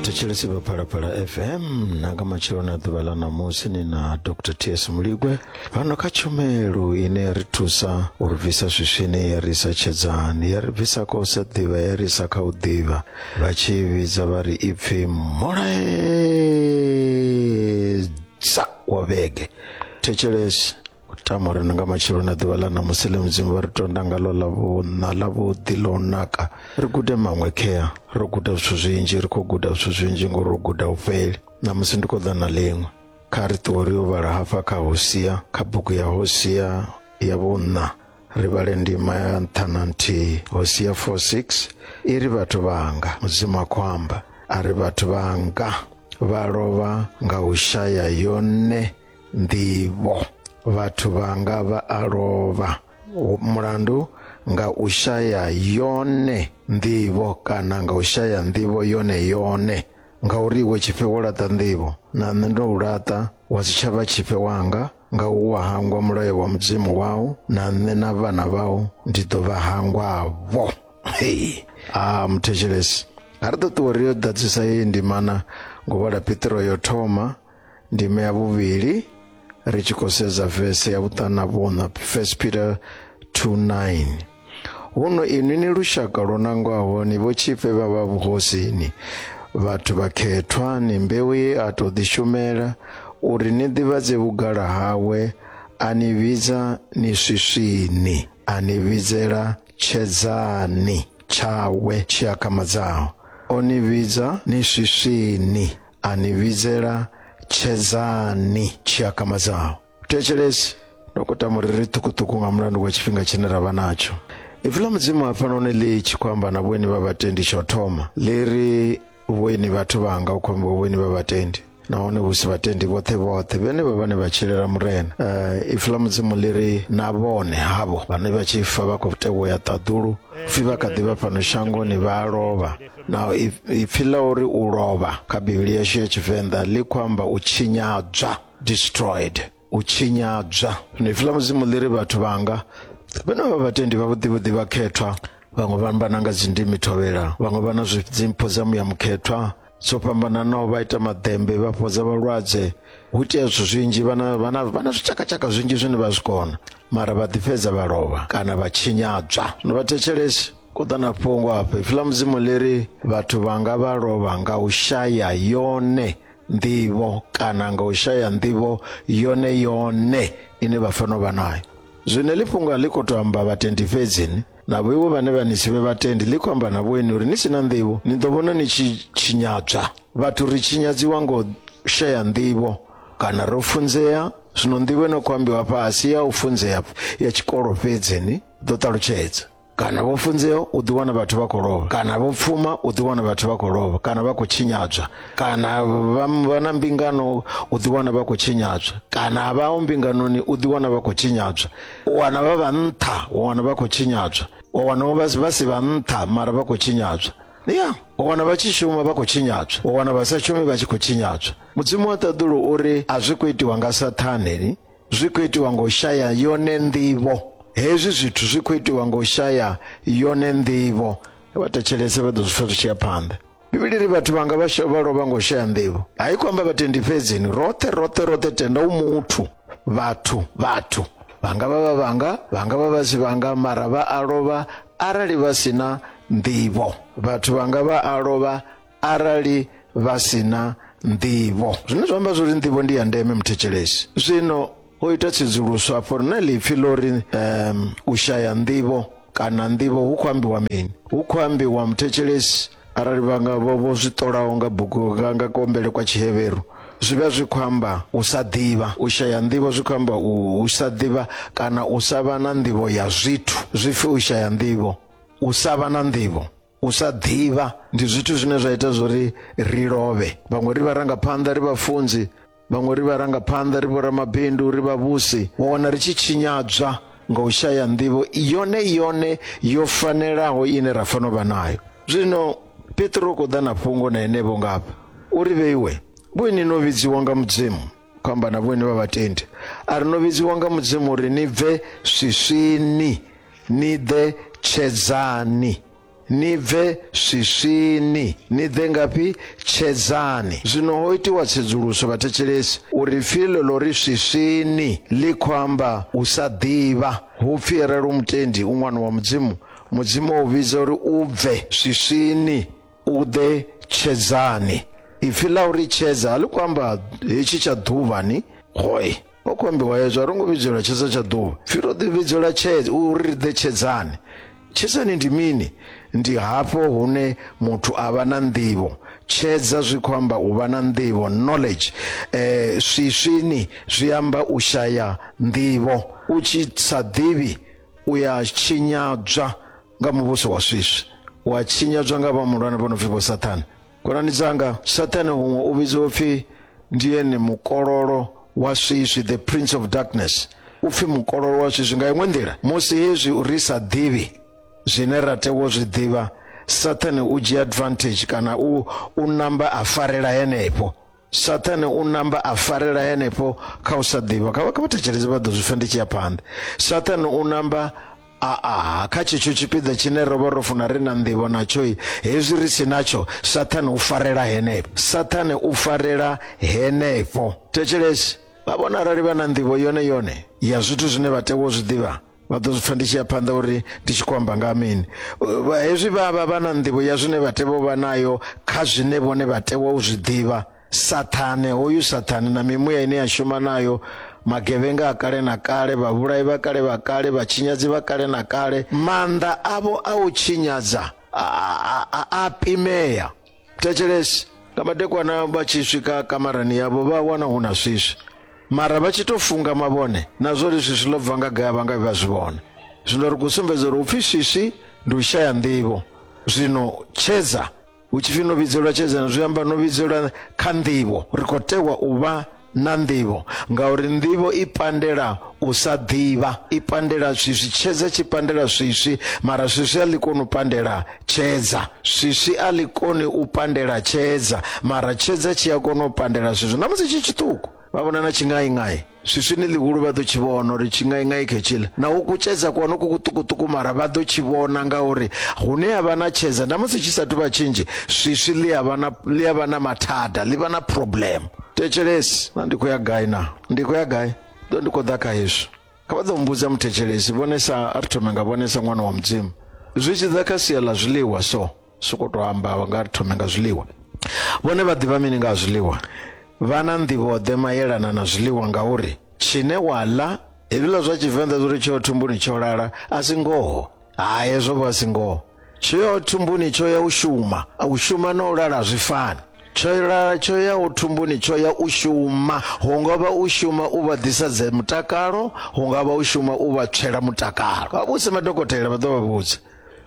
thetshelesi vha phalaphala fm na nga matshelo na ḓuvha ḽa ṋamusi ni na dr ts muligwe fhano kha tshumelo ine ya ri thusa u ri bvisa swiswini ya ri isa tshedzani ya ri bvisa kha u sa ḓivha ya ri isa kha u ḓivha vha tshi vhidza vha ri ipfi mulaedza wa vhege thetshelesi u tama uri nga matshelo na ḓuvha ḽa ṋamusi ḽe mudzimu vha ri tonda ngalo ḽa vhuṋa ḽa vhuḓi ḽo naka ri gude maṅwe khea ro guda zwithu zwinzhi ri khou guda zwithu zwinzhi ngori ro guda u fheli ṋamusi ndi khou ḓa na ḽiṅwe kha ri ṱuwe ri yo vhala hafha kha hosia kha bugu ya hosia ya vhuṋa ri vhale ndima ya nṱha na nthihi hosia 46 i ri vhathu vhanga mudzimu a khou amba a ri vhathu vhanga vha lovha nga u shaya yone nḓivho vhathu vhanga vha a lovha mulandu nga u shaya yone nḓivho kana nga u shaya nḓivho yone yone ngauri iwe tshifhe wo laṱa nḓivho na nṋe ndo u laṱa wa si tshavha tshifhe wanga nga u wa hangwa mulayo wa mudzimu wau na nṋe na vhana vhau ndi ḓo vha hangwavho hey. a ah, muthetshelesi a ri ṱuṱuwe ri yo ḓadzisa yeyi ndimana ngo vhala pitiro yo thoma ndime ya vhuvhili ri tshi khou sedza vese ya vhuṱana vhuṋa 1 peter 29 huno inwi ni lushaka lwo nangwaho ni vho tshifhe vha vha vhuhosini vhathu vhakhethwa ni mbeu ye a tou ḓishumela uri ni ḓivhadze vhugala hawe a ni vhidza ni swiswini a ni vhidzela tshedzani tshawe tshi akamadzaho o ni vhidza ni swiswini anivhidzela tshedzani tshiakama dzao thetshelesi dokota muriri ṱhukuṱhuku nga mulandu wa tshifhinga tshine ra vha natsho ipfi ḽa mudzimu hafhanoni ḽi tshi khou amba na vhoini vha vhatendi tsho thoma ḽi ri vhoini vhathu vhanga u khou ambiwa vhoini vha vhatendi nahone hu si vhatendi vhoṱhe vhoṱhe vhene vha vhane vha tshilela murena uh, ipfi ḽa mudzimu ḽi ri na vhone havho vhane vha tshi fa vha khou tewa ya ṱaḓulu pfi vha kha ḓi vha fhano shangoni vha lovha na ipfi la uri u lovha kha bivhili yashu ya tshivenḓa ḽi khou amba u tshinyadzwa destroyed u tshinyadzwa zwino ipfi la mudzimu ḽi ri vhathu vhanga vhane vha vhatendi vhavhuḓivhuḓi vha khethwa vhaṅwe vha amba na nga dzindimi thovhela vhaṅwe vha na dzimpho dza muya mukhethwa dzo fhambananaho vha ita maḓembe vha fhodza vhalwadze hu itea zwithu zwinzhi vhana vhana vhana zwitshakatshaka zwinzhi zwine vha zwi kona mara vha ḓifhedza vha lovha kana vha tshinyadzwa no vha thetshelesi kutana fhungo afha ipfi ḽa mudzimu ḽi ri vhathu vhanga vha lovha nga u shaya yone nḓivho kana nga u shaya nḓivho yone yone ine vha fanela u vha nayo zwino ḽi fhungo a ḽi khou tou amba vhatendi fhedzini navho iwe vhane vha ni sivhe vhatendi ḽi khou amba na vhoeni uri ni si na nḓivho ni ḓo vhona ni tshi tshinyadzwa vhathu ri tshinyadziwa ngo shaya nḓivho kana ro funzea zwino nḓivho ino khou ambiwa fhasi ya u funzea ya tshikolo fhedzini ḓo ṱalutshedza kana vho funzea u ḓi wana vhathu vha khou lovha kana vho pfuma u ḓi wana vhathu vha khou lovha kana vha khou tshinyadzwa kana vha vha na mbingano u ḓi wana vha khou tshinyadzwa kana vha o mbinganoni u ḓi wana vha khou tshinyadzwa u wana vha vha nṱha u wana vha khou tshinyadzwa u wana vha vha si vha nṱha mara vha khou tshinyadzwa ya u wana vha tshi shuma vha khou tshinyadzwa u wana vha sa shumi vha tshi khou tshinyadzwa mudzimu wa ṱaḓulu uri a zwi khou itiwa nga saṱhane Zwi khou itiwa nga u shaya yone nḓivho. Hezwi zwithu zwi khou itiwa nga u shaya yone nḓivho. Vha thetshelese vha ḓo zwi pfa zwi tshi ya phanḓa. Bivhili ri vhathu vhanga vha vha lovha nga u shaya nḓivho. A i khou amba vhatendi fhedzi ni roṱhe roṱhe roṱhe tenda u muthu vhathu vhathu vhanga vha vha vhanga vhanga vha vha si vhanga mara vha a lovha arali vha sina nḓivho vhathu vhanga vha a lovha arali vha si na nḓivho zwine zwa amba zwori nḓivho ndi ya ndeme muthetshelesi zwino ho ita tsedzuluso afho ri na ḽipfi ḽo ri um, u shaya nḓivho kana nḓivho hu khou ambiwa mini hu khou ambiwa muthetshelesi arali vha nga vho vho zwi ṱolaho nga bugu nga nga kombele kwa tshiheveru zwi vha zwi khou amba u sa ḓivha u shaya nḓivho zwi khou amba u sa ḓivha kana u sa vha na nḓivho ya zwithu zwi pfi u shaya nḓivho u sa vha na nḓivho u sa ḓivha ndi zwithu zwine zwa ita zwori ri lovhe vhaṅwe ri vha ranga phanḓa ri vha funzi vhaṅwe ri vha ranga phanḓa ri vhora mabindu ri vha vhusi wa wana ri tshi tshinyadzwa nga u shaya nḓivho yone yone yo fanelaho ine ra fanela u vha nayo zwino petro u khou ḓa na fhungo na henevho ngafha uri vheiwe vhoini no vhidziwa nga mudzimu khou amba na vhone vha vhatendi a ri no vhidziwa nga mudzimu uri ni bve swiswini ni ḓe tshedzani ni bve swiswini ni ḓe ngafhi tshedzani zwino ho itiwa tsedzuluso vhathetshelesi uri pfi ḽo ḽo ri swiswini ḽi khou amba u sa ḓivha hu pfi arali u mutendi u ṅwana wa mudzimu mudzimu o vhidza uri u bve swiswini u ḓe tshedzani ipfi ḽa uri tshedza a ḽi khou amba hetshi tsha ḓuvha ni hoi ho khou ambiwa hezwo a ro ngo vhidzelwa tshedza tsha ḓuvha pfi ro ḓi vhidzelwa tshedza uri ri ḓe tshedzani tshedzani ndi mini ndi hafho hune muthu a vha na nḓivho tshedza zwi khou amba u vha na nḓivho knowledge eh swiswini zwi amba u shaya nḓivho u tshi sa ḓivhi u ya tshinyadzwa nga muvhuso wa swiswi wa tshinyadzwa nga vha mulwane vho no pfi vho sathane khonani dzanga sathane huṅwe u vhidziwa upfi ndi ene mukololo wa swiswi the prince of darkness u pfi mukololo wa swiswi nga iṅwe nḓila musi hezwi ri sa ḓivhi zwine ra tea u zwi ḓivha sathane u dzhia advantage kana u u namba a farela henefho sathane u namba a farela henefho kha u sa ḓivha kha vha thetsheleze vha ḓo zwi pfa ndi tshi ya phanḓa sathane u namba aa kha tshetsho tshipiḓa tshine ro vha ro funa ri na nḓivho natshoi hezwi ri si natsho sathane u farela henefho sathane u farela henefho thetshelesi vha vhona arali vha na nḓivho yone yone ya zwithu zwine vha tea wo zwi ḓivha vha ḓo zwi pfa ndi tshi ya phanḓa uri ndi tshi khou amba nga ha mini Vha- hezwi vha vha vha na nḓivho ya zwine vha tea u vha nayo kha zwine vhone vha tea u zwi ḓivha sathane hoyu sathane na mimuya ine ya shuma nayo magevhenga a kale na kale vhavhulayi vha kale vha kale vhatshinyadzi vha kale na kale maanḓa avho a u tshinyadza a- a a- a pimea thetshelesi nga madekwana vha tshi swika kamarani yavho vha wana hu na swiswi mara vha tshi to funga mavhone na zwo ri swiswi ḽo bva nga gaya vha nga vha zwi vhona zwino ri khou sumbedza uri upfhi swiswi ndi u shaya nḓivho zwino tshedza hu tshifhi no vhidzelwa tshedzana zwi amba no vhidzelwa kha nḓivho ri khou tewa u vha na nḓivho ngauri nḓivho i pandela u sa ḓivha i pandela swiswi tshedza tshi pandela swiswi mara swiswi a ḽi koni u pandela tshedza swiswi a ḽi koni u pandela tshedza mara tshedza tshi a kona u pandela swiswi na musi tshi tshiṱuku vha vhona na tshingaingai swiswi ni ḽihulu vha ḓo tshi vhona uri tshingaingai khetshila na u kutshedza ku hone ku kuṱukuṱuku mara vha ḓo tshi vhona ngauri hune ha vha na tshedza na musi tshi sa thu vha tshinzhi swiswi ḽi a vha na ḽi a vha na mathada ḽi vha na problem thetshelesi na ndi khou ya gai na ndi khou ya gai ḓo ndi khou ḓa kha hezwi kha vha ḓo mbudza muthetshelesi vhonesa a ri thome nga vhonesa ṅwana wa mudzimu zwi tshi ḓa kha sia ḽa zwiḽiwa so soko to amba vha nga ri thome nga zwiḽiwa vhone vha ḓivha mini nga ha zwiḽiwa vha na nḓivhoḓe mayelana na zwiḽiwa ngauri tshine wa ḽa hezwiḽa zwa tshivenḓa zwo ri tsheo thumbuni tsho lala a si ngoho ha hezwo vha si ngoho tsho ya thumbuni tsho ya u shuma u shuma na u lala zwi fani tsho lala tsho ya u thumbuni tsho ya u shuma hu nga vha u shuma u vha ḓisa dze mutakalo hu nga vha u shuma u vha tswela mutakalo vha vhuse madokotela vha ḓo vha vhudza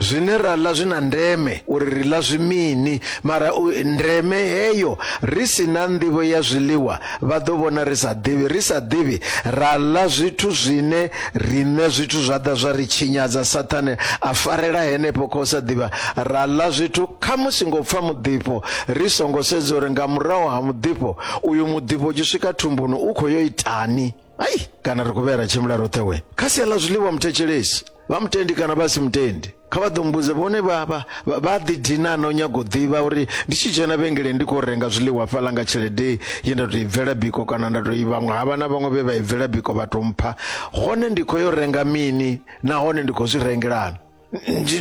zwine ra ḽa zwi na ndeme uri ri ḽa zwi mini mara u- ndeme heyo ri si na nḓivho ya zwiḽiwa Vha ḓo vhona ri sa ḓivhi, ri sa ḓivhi, ra ḽa zwithu zwine riṋe zwithu zwa ḓa zwa ri tshinyadza. Saṱhane a farela henefho kha u sa ḓivha, ra ḽa zwithu khamusi ngo pfa muḓifho ri songo sedza uri nga murahu ha muḓifho uyu, muḓifho u tshi swika thumbuni u khou yo itani. Ai, kana ri khou vhuya ra tshimbila roṱhe we kha sia ḽa zwiḽiwa, muthetshelesi, vha mutendi kana vha si mutendi. kha vha ḓo mbudza vhone vha vha vha ḓi dina no nyago ḓivha uri ndi tshi dzhena vhengeleni ndi khou renga zwiḽiwa fhaḽa nga tshelede ye nda tou i bvela biko kana nda tou i vhaṅwe ha vha na vhaṅwe vhe vha i bvela biko vha tou mpha hone ndi khou yo renga mini nahone ndi khou zwi rengelana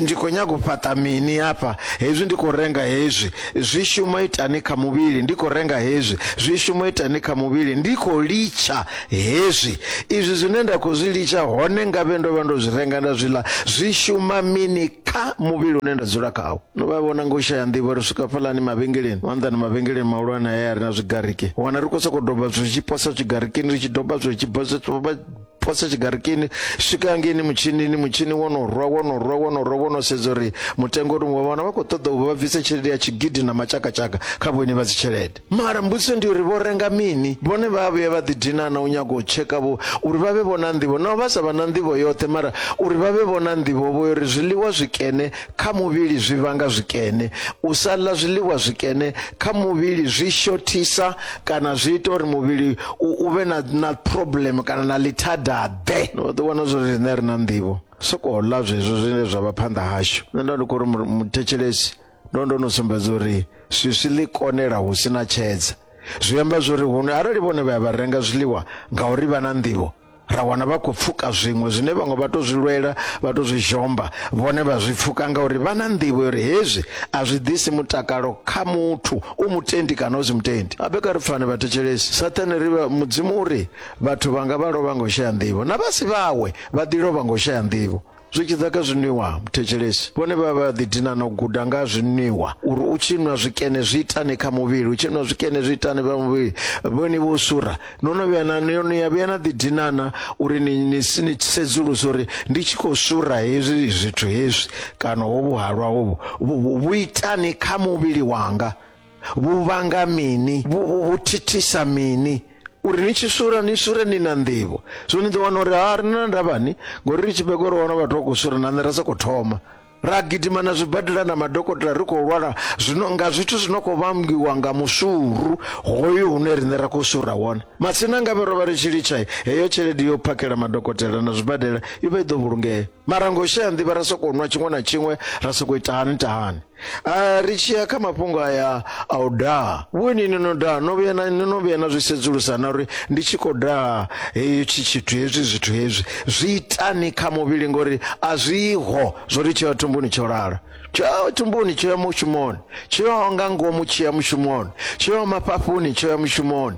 ndi khou nyaga u fhaṱa mini hafha hezwi ndi khou renga hezwi zwi shuma itani kha muvhili ndi khou renga hezwi zwi shuma itani kha muvhili ndi khou litsha Hezwi, izwi zwine nda khou zwi litsha, hone ngavhe ndo vha ndo zwi renga nda zwi ḽa, zwi shuma mini kha muvhili une nda dzula khawo? No vha vhona nga u shaya nḓivho, ri swika fhaḽani mavhengeleni, maanḓani mavhengeleni mahulwane haya a re na zwigariki, wana ri khou sokou doba zwithu zwi tshi posa zwigarikini, ri tshi doba zwithu zwi tshi posa posa tshigarikini swika hangeini mutshinini mutshini wo no rwa wo no rwa wo no rwa wo no sedza uri mutengo uri vha vhona vha khou ṱoḓa u vha bvise tshelede ya tshigidi na matshakatshaka kha vhone vha dzi tshelede Mara mbudziso ndi uri vho renga mini? Vhone vha a vhuya vha ḓidina na u nyaga u tsheka vho uri vha vhe vho na nḓivho? Naho vha sa vha na nḓivho yoṱhe, mara uri vha vhe vho na nḓivho, vho ri zwiḽiwa zwikene kha muvhili zwi vhanga zwikene. U sa ḽa zwiḽiwa zwikene kha muvhili zwi shothisa kana zwi ita uri muvhili u u vhe na na problem kana na ḽithadaḓe. Ni vho ḓi wana zwo ri riṋe a ri na nḓivho, sokou ḽa zwezwo zwine zwa vha phanḓa hashu. Nṋe nda ndi khou ri muthetshelesi. ndo ndo no sumbedza uri swiswi ḽi konela hu si na tshedza zwi amba zwori huno arali vhone vha ya vha renga zwiḽiwa ngauri vha na nḓivho ra wana vha khou pfuka zwiṅwe zwine vhaṅwe vha to zwi lwela vha to zwi zhomba vhone vha zwi pfuka ngauri vha na nḓivho uri hezwi a zwi ḓisi mutakalo kha muthu u mutendi kana u si mutendi abe kha ri pfane vhathetshelesi sathane ri mudzimu uri vhathu vhanga vha lovha ngo shaya nḓivho na vhasi vhawe vha ḓi lovha ngo shaya nḓivho zwi tshi ḓa kha zwinwiwa muthetshelesi vhone vha vha ḓi dina na u guda nga zwinwiwa uri u tshi nwa zwikene zwi itani kha muvhili u tshi nwa zwikene zwi itani vha muvhili vhone vho sura no no vhuya na no ya vhuya na ḓi dinana uri ni ni ni sedzulusa uri ndi tshi khou sura hezwi zwithu hezwi kana hovhu halwa hovhu vhu itani kha muvhili wanga vhu vhanga mini vhu, vhu, vhu thithisa mini uri ni tshi sura ni sure ni na nḓivho so ni ḓo wana uri ha ri na ndavhani ngori ri tshi bego ri wana vhathu vha khou sura na nṋe ra sokou thoma ra gidima na zwibadela na madokotela ri khou lwala zwino nga zwithu zwi no khou vhambiwa nga musuru hoyu hune riṋe ra khou sura wone matsina ngavhe ro vha ri tshi litsha heyo tshelede yo phakhela madokotela na zwibadela i vha i ḓo vhulungea mara ngo shaya nḓivha ra sokou nwa tshiṅwe na tshiṅwe ra sokou ita hani tahani Ah, ri tshi ya kha mafhungo aya a u daha vhoni ni no daha no vhuya na ni no vhuya na zwi sedzulusa na uri ndi tshi khou daha hetshi tshithu hezwi zwithu hezwi zwi itani kha muvhili ngori a zwiho zwo ri tsho ya thumbuni tsho lala tsho ya thumbuni tsho ya mushumoni tsho ya nga ngomu tsho ya mushumoni tsho ya mafhafuni tsho ya mushumoni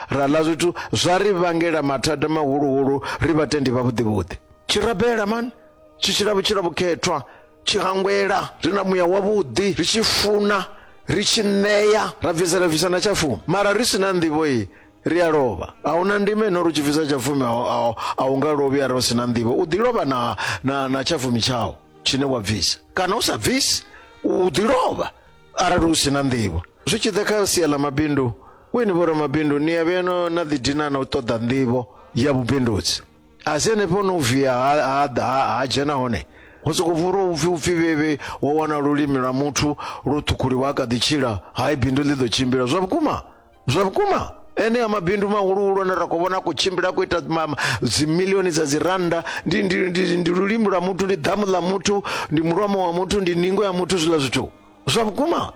ra ḽa zwithu zwa ri vhangela mathada mahuluhulu ri vhatendi vhavhuḓivhuḓi tshi rabela mani tshi tshila vhutshila vhukhethwa tshi hangwela ri na muya wavhuḓi ri tshi funa ri tshi ṋea ra bvisela bvisa na tsha fumi mara ri si na nḓivho iyi ri a lovha a hu na ndima ino ri tshi bvisa tsha fumi a hu nga lovhi arali u si na nḓivho u ḓi lovha na, na, na tsha fumi tshau tshine wa bvisa kana u sa bvisi u ḓi lovha arali u si na nḓivho zwi tshi ḓa kha sia ḽa mabindu weni vho ramabindu ni ya vheno na ḓidina na u ṱoḓa nḓivho ya vhubindudzi a si henefho no via ha dzhena hone hu soko vhura upfi upfi vhevhe wa wana lulimi lwa muthu lwo ṱhukhuliwa a kha ḓi tshila hai bindu ḽi ḓo tshimbila zwa vhukuma zwa vhukuma enea mabindu mahuluhulu ane ra khou vhona khou tshimbila khou ita ma- ma- dzimilioni dza dzi rannda ndi, ndi, ndi, ndi lulimi lwa muthu ndi damu ḽa muthu ndi mulomo wa muthu ndi ningo ya muthu zwiḽa zwithu zwa vhukuma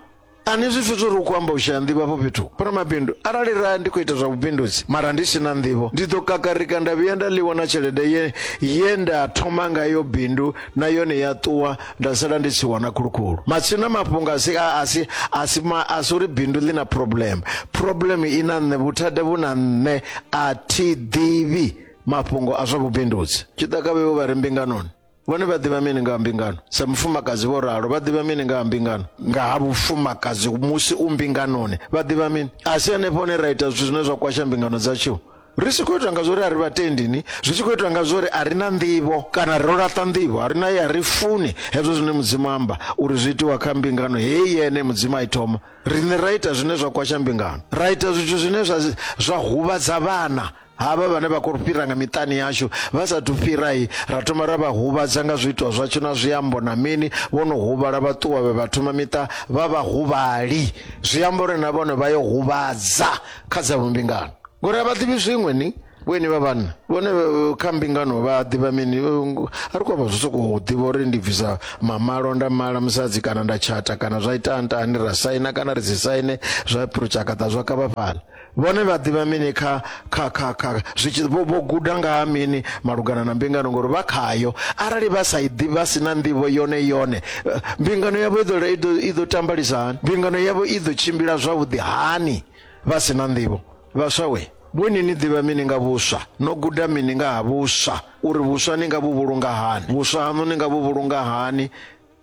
ani zwi fhethu uri u khou amba u shaya nḓivho afho fhethu fhano mabindu arali ra ndi khou ita zwa vhubindudzi mara ndi si na nḓivho ndi ḓo kakarika nda vhuya nda ḽiwa na tshelede ye, ye nda thoma ngayo bindu na yone ya ṱuwa nda sala ndi tshi wana khulukhulu matsina mafhungo asi a- asi asi ma- asi uri bindu ḽi na problem problem i na nṋe vhuthada vhu na nṋe a thi ḓivhi mafhungo a zwa vhubindudzi tshi ḓa kha vhevho vha re mbinganoni vhone vha ḓivha mini nga ha mbingano sa mufumakadzi vho ralo vha ḓivha mini nga ha mbingano nga ha vhufumakadzi musi u mbinganoni vha ḓivha mini a si henefho hone ra ita zwithu zwine zwa kwasha mbingano dzatshiwo ri tshi khou itwa nga zwori a ri vhatendi ni zwi tshi khou itwa nga zwori a ri na nḓivho kana ro laṱa nḓivho a ri na ye a ri funi hezwo zwine mudzimu amba uri zwi itiwa kha mbingano heyi yene mudzimu a i thoma riṋe ra ita zwine zwa kwasha mbingano ra ita zwithu zwine zwa zwa huvhadza vhana havha vhane vha khou fhira nga miṱani yashu vha sathu fhirai ra thoma ra vha huvhadza nga zwiitwa zwatsho na zwiambo na mini vho no huvhala vha ṱuwa vhe vha thoma miṱa vha vha huvhali zwi amba uri na vhone vha yo huvhadza kha dza vhumbingano ngori a vha ḓivhi zwiṅwe ni vhoeni vha vhanna vhone eh, kha mbingano vha ḓivha mini eh, a ri kwavha zwo sokou ḓivha uri ndi bvisa mamalo nda mala musadzi kana nda tshata kana zwa ita ntani ra saina kana ri si saine zwa phurotshakhata zwa kavha fhala vhone vha ḓivha mini kha kha kha kha zwitshi vho guda nga ha mini malugana na mbingano ngori vha khayo arali vha sa i ḓivha si na nḓivho yone yone eh, mbingano yavho i ḓo tambalisa hani mbingano yavho i ḓo tshimbila zwavhuḓi hani Vha si na nḓivho, vhaswa we! Vhoni ni ḓivha mini nga vhuswa? No guda mini nga ha vhuswa? Uri vhuswa ni nga vhu vhulunga hani? Vhuswa haṋu ni nga vhu vhulunga hani?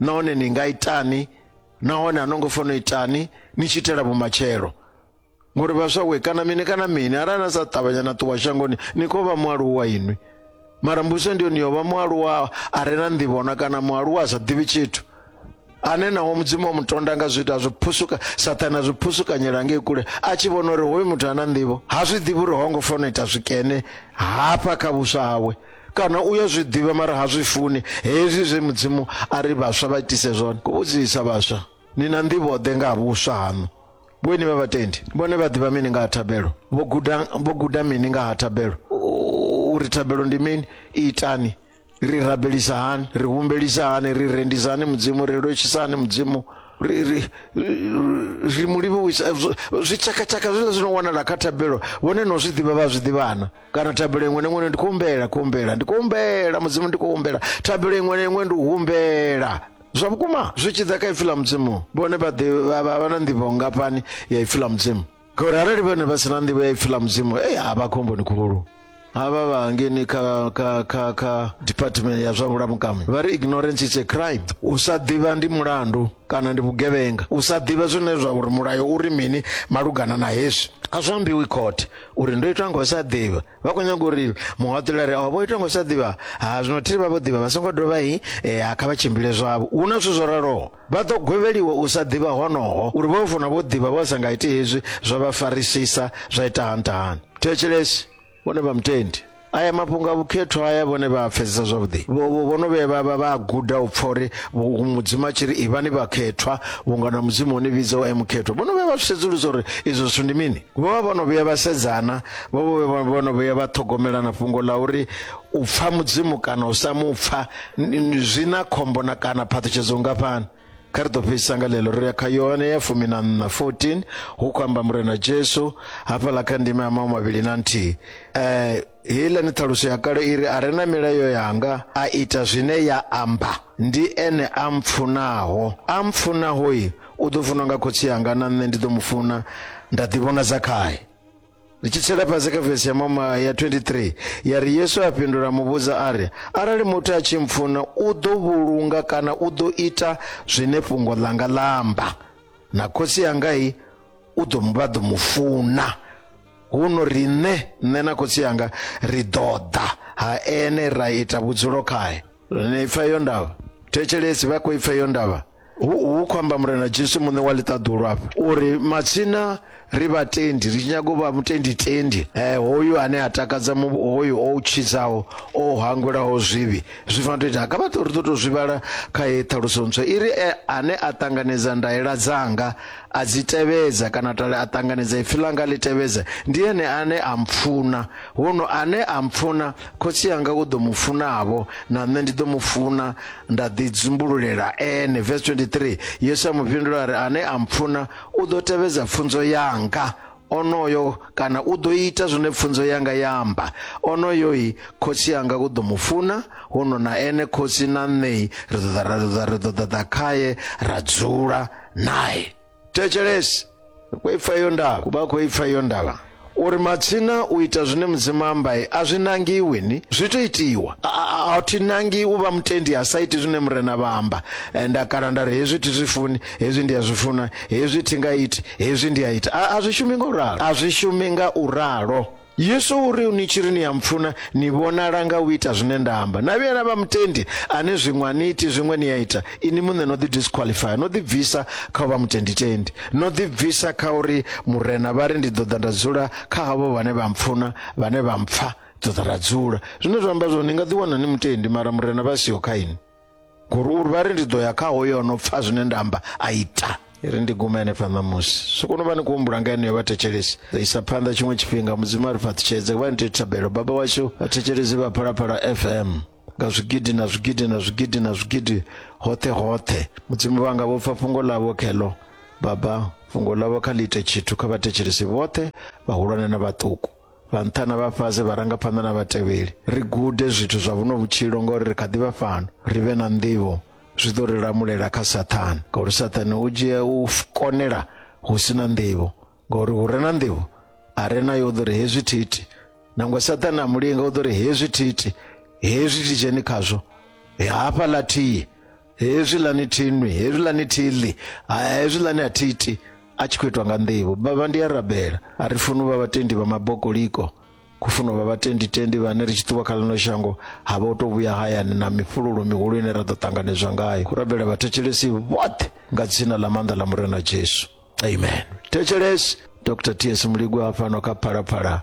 Nahone ni nga itani? Nahone a no ngo fanela u itani ni tshi itela vhumatshelo? Ngori vhaswa we! Kana mini kana mini, arali na sa ṱavhanya na ṱuwa shangoni, ni khou vha mualuwa inwi. mara mbudziso ndi yone yovha mualuwa a re na nḓivhona kana mualuwa a sa ḓivhi tshithu ane naho mudzimu wa mutonda nga zwithu azwi phusuka sathane azwi phusukanyela ngei kule a tshi vhona uri hoyu muthu ana nḓivho ha zwi ḓivhi uri ho ngo fanela ita zwikene hafha kha vhuswa hawe kana u ya zwi ḓivha mara ha zwi funi hezwi zwe mudzimu a ri vhaswa vha itise zwone ku vhudzisa vhaswa ni na nḓivho ḓe nga ha vhuswa haṋu Vhoini vha vhatendi vhone vha ḓivha mini nga ha thabelo? Vho guda vho guda mini nga ha thabelo? Uri thabelo ndi mini? Itani ri rabelisa hani ri humbelisa hani ri rendisa hani mudzimu ri lwetshisa hani mudzimu ri ri ri mu livhuwisa zwi tshakatshaka zwiḽa zwi no wanala kha thabelo vhone no zwi ḓivha vha zwi ḓivhana kana thabelo iṅwe na iṅwe ndi khou humbela khou humbela ndi khou humbela mudzimu ndi khou humbela thabelo iṅwe na iṅwe ndi u humbela zwa vhukuma zwi tshi ḓa kha ipfi ḽa mudzimu vhone vha vha na nḓivho ngafhani ya ipfi ḽa mudzimu ngauri arali vhone vha si na nḓivho ya ipfi ḽa mudzimu e a vha khomboni khulu havha vha ngeni kha kha kha kha department ya zwa vhulamukami vha ri ignorance is a crime u sa ḓivha ndi mulandu kana ndi vhugevhenga u sa ḓivha zwine zwa uri mulayo uri mini malugana na hezwi a zwi ambiwi khothe uri ndo itwa nga u sa ḓivha vha khou nyaga uri muhaṱulare o vho itwa ngo sa ḓivha ha zwino thiri vha vho ḓivha vha songo dovha i e, ha kha vha tshimbile zwavho hu na zwithu zwo raloho vha ḓo gwevheliwa u sa ḓivha honoho uri vho funa vho ḓivha vho sa nga iti hezwi zwa vha farisisa zwa ita hantahani thetshelesi vhone vha mutendi aya mafhungo a vhukhethwa haya vhone vha a pfesesa zwavhuḓi vho no vhuya vhavha vha a guda u pfha uri mudzimu a tshi ri ivhani vhakhethwa vhunga na mudzimu o ni vhidza u e mukhethwa vho no vhuya vha zwi sedzulusa uri izwo zwithu ndi mini vho vha vho no vhuya vha sedzana vho vho vho no vhuya vha ṱhogomelana fhungo ḽa uri u pfha mudzimu kana u sa mu pfha zwi na khombo na kana phaṱhutshedzo ngafhani kha ri ḓo fhedzisa nga ḽeḽo ri ya kha yohane ya fumi na nṋa 14 hu khou amba murena jesu hafhaḽa kha ndima ya mau mavhili na nthihi um Heiḽani ṱhaluso ya kale i ri, A re na milayo yanga, a ita zwine ya amba, ndi ene a mpfunaho. A mpfunaho-i, u ḓo funwa nga Khotsi anga, na nṋe ndi ḓo mu funa, nda ḓivhonadza khae. Ri tshi tsela fhasi kha vesi ya mama ya 23 ya ri, Yesu a fhindula a mu vhudza a ri, Arali muthu a tshi mpfuna, u ḓo vhulunga kana u ḓo ita zwine fhungo ḽanga ḽa amba, na Khotsi anga-i, u ḓo vha ḓo mu funa. huno riṋe nṋe na khotsi yanga ri ḓo ḓa ha ene ra ita vhudzulo khae ni pfa iyo ndavha thetshelesi vha khou ipfa iyo ndavha hu khou amba murena jesu muṋe wa ḽiṱaḓulu afha uri matsina ri vhatendi ri tshi nyaga u vha mutendi tendi eh, hoyu ane a takadza hoyu o tshidzaho o hangwelaho zwivhi zwi fanela to ita kha vhaṱo ri ḓo to zwivhala kha ye ṱhaluso ntswa i ri eh, ane a ṱanganedza ndaela dzanga a dzi tevhedza kana tale a ṱanganedza ipfi ḽanga ḽi tevhedza ndi ene ane a mpfuna huno ane a mpfuna khotsi yanga u ḓo mu funavho na nṋe ndi ḓo mu funa nda ḓi dzumbululela ene verse 23 yesu a mu fhindula a ri ane a mpfuna u ḓo tevhedza pfunzo yanga onoyo kana u ḓo ita zwine pfunzo yanga ya amba onoyoi khotsi yanga u ḓo mu funa huno na ene khotsi na nṋei ri ḓo ḓa ra ḓo ḓa ri ḓo ḓaḓa khaye ra dzula naye thetshelesi khoipfa iyo ndala kuba khoipfa iyo ndala uri matsina u ita zwine mudzimu ambaye a zwi nangiwi ni zwi to itiwa A- a- a- a thi nangi u vha mutendi ha sa iti zwine murena vha amba Eh, nda kala nda ri hezwi thi zwi funi hezwi ndi a zwi funa hezwi thi nga iti hezwi ndi a ita a a zwi shumi nga u ralo a zwi shumi nga u ralo yesu u ri ni tshi ri ni ya mpfuna ni vhonala nga u ita zwine nda amba na vhuya na vha mutendi ane zwiṅwe a ni iti zwiṅwe ni a ita ini muṋe no ḓi disqualifya no ḓi bvisa kha u vha mutenditendi no ḓi bvisa kha uri murena vha ri ndi ḓo ḓa nda dzula kha havho vhane vha mpfuna vhane vha mpfa ḓo ḓa ra dzula zwine zwa amba zwo ni nga ḓi wana ni mutendi mara murena vha siho kha ini gururu vha ri ndi ḓo ya kha hoyo no pfa zwine nda amba a ita i ri ndi gume henefha ṋamusi so kono vha ni khou humbula nga yeneyo vhathetshelesi ḓo isa phanḓa tshiṅwe tshifhinga mudzimu a ri fhaṱutshedze vha ni tea thabelo baba washu vhathetshelesi vha phalaphala fm nga zwigidi na zwigidi na zwigidi na zwigidi hoṱhe hoṱhe mudzimu vhanga vho pfa fhungo ḽavho kheḽo baba fhungo ḽavho kha ḽi ite tshithu kha vhathetshelesi vhoṱhe vhahulwane na vhaṱuku vha nṱha na vha fhasi vharangaphanḓa na vhatevheli ri gude zwithu zwa vhuno vhutshilo ngauri ri kha ḓi vha fhano ri vhe na nḓivho zwi ḓo ri lamulela kha sathane ngauri sathane u dzhia u konela hu si na nḓivho ngauri hu re na nḓivho a re nayo u ḓo ri hezwi thiti nangwe sathane a mulinga u ḓo ri hezwi thiti hezwi titsheni khazwo hafha ḽa thihi hezwiḽani thinwi hezwiḽani thiḽi hezwiḽani a thiti a tshi khou itwa nga nḓivho baba ndi a rabela a ri funi vha vhatendi vha mabokoliko ku funa vha vhatenditendi vhane ri tshi ṱuwa kha ḽino shango ha vha u tou vhuya hayani na mifhululo mihulu ine ra ḓo ṱanganedzwa ngayo ku rabela vhathetshelesi vhoṱhe nga dzina ḽa maanḓa ḽa murena jesu amen thetshelesi dr ts muligwa fhano kha phalaphala